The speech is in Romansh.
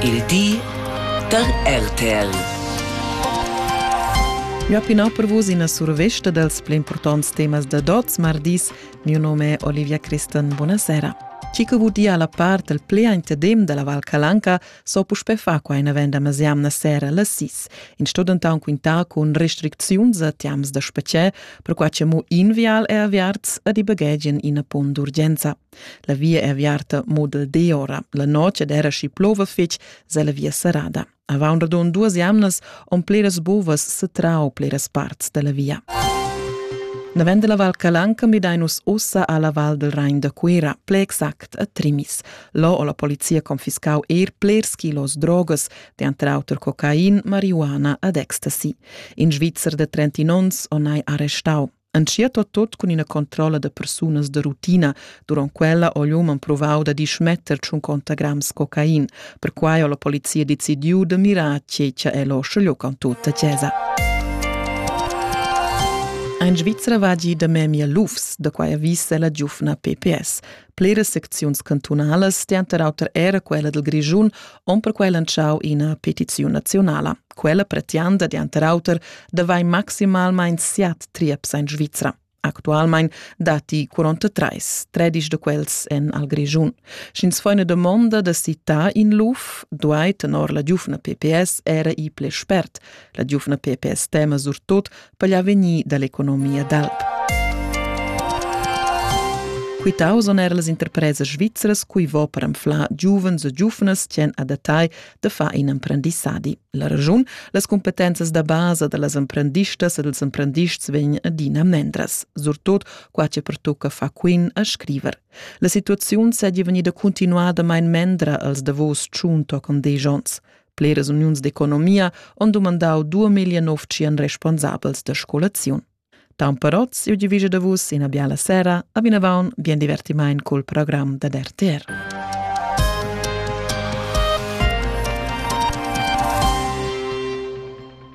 il di da RTL. Ja pinà per vus ina survesta dals pli importants temas da Dots mardis. Mio nome è Olivia Christen. Buonasera. Chi che vudia la part il pli intedem della Val Calanca so puspè fa qua in venda masiamna sera la sis. In studentan quinta con restricziuns a tiams da specie, per qua che mo invial e aviarts ad i baghegian ina pon d'urgenza. La via è aviarta mo dal di ora. La notg ed era schi plova fitg, se la via serrada. Avant radund duas jamnas on pleras bovas setrau pleras parts della via. Na vend la Val Calanca midainus ussa alla Val del Rain da Cuira, ple exact a Trimis. Lo o la polizia confiscau eir plers kilos drogas, de tra auter cocain, marihuana ad ecstasy. In Svizzer de 30 ons o nai arrestau. Entschiet ho tot cun ina controlla da persunas da rutina. Durant quella ho l'uman provau da dismetter tschun conta grams cocain. Perquai ho la polizia decidiu da mirar tgei che el ho scegliu con tutta chiesa. Ein Svizra vagi da memia lufs, da quai avvisa la giufna PPS. Pliras secziuns cantunalas, denter auter era quella dil Grischun, on perquei lantschau ina petiziun nazionala. Quella pretianda, denter auter, da vai maximalmein siat trieps en Svizra. Actualmein dati 43, tredisch de quels en al Grischun. Sch'ins fa una domanda da citar in luf, duai tenor la giufna PPS era i ple spert. La giufna PPS tema surtot per l'avegnir dall'economia d'alp. Quitau son er las interpresas svizras cui vo per anflar giuvens e giuvnas tien a detagl de far in emprendissadi. La ragiun, las competenzas da basa da las emprendistas e dels emprendists vegn adina mendras, surtot qua che pertocca fa quin a scriver. La situaziun seigi vegnida continuada mein mendra als davos tschun toccon desch ons. Bleras uniuns d'economia han dumandau duemila novcien responsabels da scolaziun. Tamperot siu divisa da vus ina biala sera, a vinavon bien divertimaint col program da RTR.